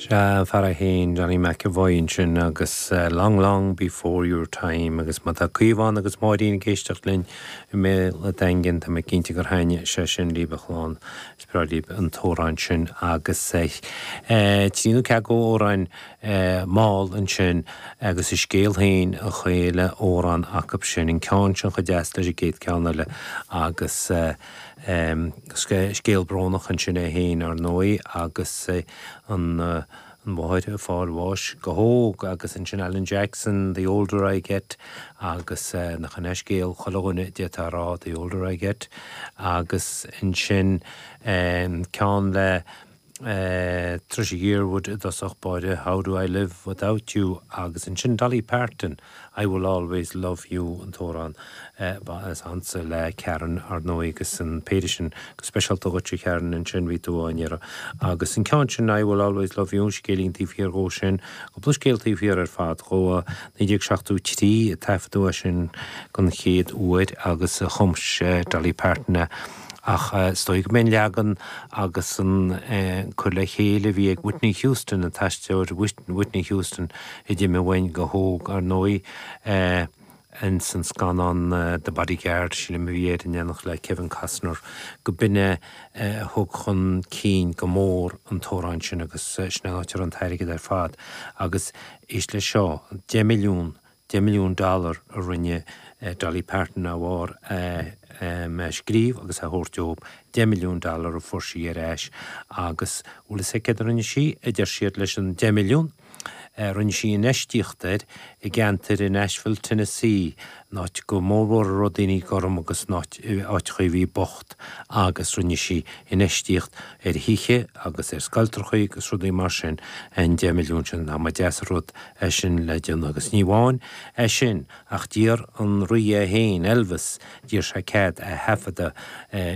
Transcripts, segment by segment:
Sea, an fear é féin, Johnny McEvoy, ansin agus Long Long Before Your Time, agus má tá Caomhán agus Máirín ag éisteacht linn i mBéal a' Daingin, tá mé cinnte gur thaitn sé sin libh a chlann. Is breá libh an t-amhrán sin agus trí nó ceathrú amhráin mall ansin agus a scéal féin ag chaon amhrán acub sin, an ceann sin chomh deas leis an gcéad ceann eile agus. Scéal brónach ansin é féin, ar ndóigh, agus an mháthair ag fáil bháis go hóg agus ansin Alan Jackson, 'The Older I Get', agus nach in é scéal chuile dhuine, d'fhéadfá a rá, 'The Older I Get'? Agus ansin ceann le Trisha Yearwood i dtosach báire, How Do I Live Without You agus ansin Dolly Parton, I Will Always Love You an t-amhrán is ansa le Karen ar ndóigh agus an péire sin go speisialta dhuit a Karen ansin bhí tú á n-iarraidh agus an ceann sin I Will Always Love You scéilín taobh thiar dhó sin cúpla scéal taobh thiar ar fad dhó 1973 a taifeadadh é sin den chéad uair agus chum Dolly Parton é. Ach is dóigh go mb'é an leagan agus an cur le chéile a bhí ag Whitney Houston, an t-aisteoir Whitney Houston a d'imigh uainn go hóg, ar ndóigh, ins an scannán The Bodyguard, sílim, a bhí air, in éineacht le Kevin Costner, go mb'in é a thug chun cinn go mór an t-amhrán sin agus sin an áit a raibh an t-airgead ar fad. Agus éist le seo, deich milliún 10 milliún dollar a rinne Dolly Parton de bharr é a scríobh agus a thabhairt dóibh, 10 milliún dollar a fuair sí ar ais agus bhfuil 'fhios agaibh céard a rinne sí, a deir siad leis an 10 milliún? Rinne sí infheistíocht air i gceantair i Nashville, Tennessee, an áit go mórmhór a raibh daoine gorm agus an áit, áiteacha a bhí bocht agus rinne sí infheistíocht ar thithe agus ar scoiltreacha agus rudaí mar sin, an 10 milliún sin, nach ba deas an rud é sin le déanamh agus ní amháin é sin ach d'iarr an Rí é féin, Elvis, d'iarr sé cead é a thaifeadadh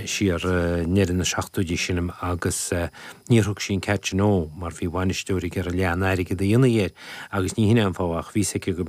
siar i ndeireadh na seachtóidí sílim agus níor thug sí an cead sin dhó mar bhí a bhainisteoir ag iarraidh leath an airgid a dhéanamh air agus ní hin é an fáth ach bhí's aici gurb é